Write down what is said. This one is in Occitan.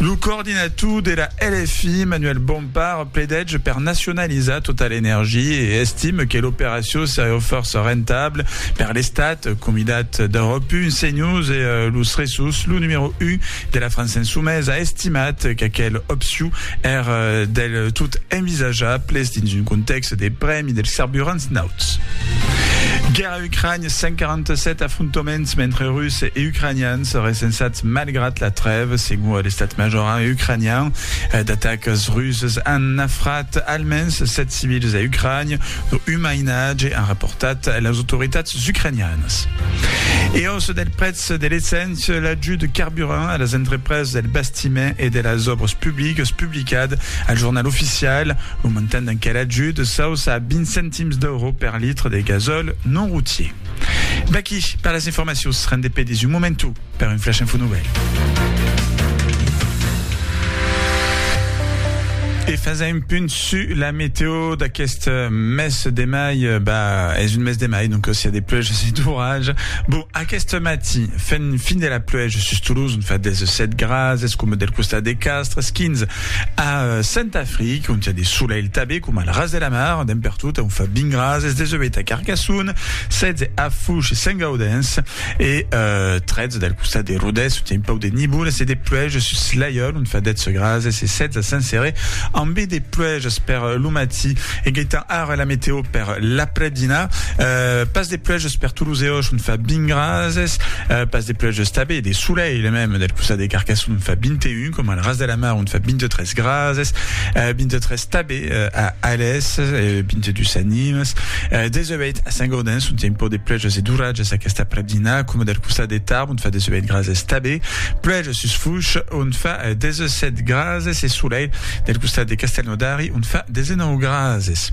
Lo coordinator de la LFI, Manuel Bompard, pledètge per nacionalizar tota l'energia e estime que l'operacion seriá fòrça rentabla per l'Estat, comidat d'Europe Un, CNews e Los Ressus. Lo numèro 1 de la França Insumesa a estimat qu'aquel opcion èr del tot envisajable dins un contèxt de prèmi dels carburants nauts. Ucraïna, 147 afrontaments entre Russes e Ucraïnians recensats malgrat la trèva, segon l'estat major ucraïnian. D'atacas rusas an nafrat almens 7 civils a Ucraïna, dont un mainatge, an raportat las autoritats ucraïnianas. E aussa del prètz de l'essent. Sur l'ajut de carburant a las entrepreses del bastiment e de las òbras publicas publicat al Jornal Oficial, lo montant d'enquel ajut s'auça a 20 centims d'euro per litre de gasòl non routier. D'aquí per las informacions, rendé pedis un momentu per un flash info nouvelle. E fasa un punt su la meteo d'aquest mes de mai, bah, es un mes de mai, donc si a des pluges, si d'orage, Bon, aqueste matin, fent fin de la pluèja sus Toulouse, ont fa 17 grads, es coma del costat de Castres, 15 a Saint-Afric, ont i a de solelh tabé, coma al ras de la mar, dempè artout, ont fa 20 grads, es 18 a Carcassonne, 16 a Fouche e Saint-Gaudens e 13 del costat de Rodés, ont i a un pauc de nivolas e de pluèja sus Laiol, ont fa 10 grads, es 16 a Saint-Céré, ambé de pluèjas per lo matin. E gaitan ara la meteo per l'après-dinar, pas de pluèjas, Eus per todos e òch, un fa vint grases, pas de pluèges tabé, de solelh mèm, del costat de Carcassona un fa vint e un, coma al ras de la mar un fa vint e tres grases, vint e tres tabé a Alès, vint e dus a Nimes, des e ueit a Saint-Gaudens ont i a un pauc de pluèges e d'oratges aquest aprèp dinà, coma del costat de Tarbes ont fa des e ueit grases tabé, pluèges sus Fouches ont fa des e sèt grases e solelh del costat de Castelnaudari ont fa des e nòu grases.